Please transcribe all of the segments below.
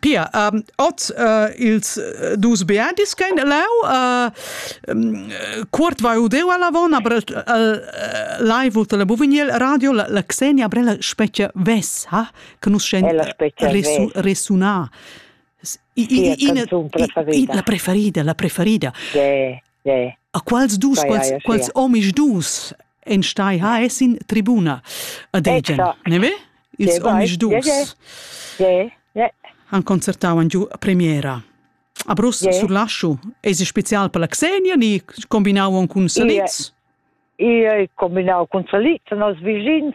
Pia, um, oz uh, ils uh, dus beadis che in leu uh, Kurt vai udeu alla von, aber live ult la Buvigniel radio la, la Xenia Brella specie ves, ha? che nus scen resuna. Ina preferida, la preferida. Sì. A quals dus, quals, quals omis dus en stai ha es in tribuna a Degen, ne ve? Ils omis dus han concertau giù a premiera. A Brussel yeah. sur Laschu es spezial per la Xenia ni combinau on cun Saliz? Ia e combinau cun Saliz a nos vischins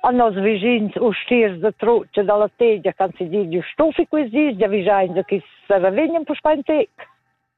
a nos vischins ustiers de truce dalla tegia can si di giu stufi quis dis ja vijain de chi se revegnen per spain tec.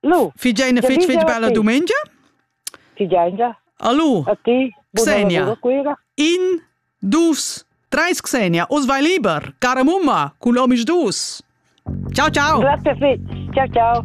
Lu. Figeina fetg fetg bella dumengia. Figeina. Allo. A ti. Xenia. In, dus, treis Xenia. Us vai liber. Cara mumma, cu l'homis dus. Ciao, ciao. Grazie fetg. Ciao, ciao.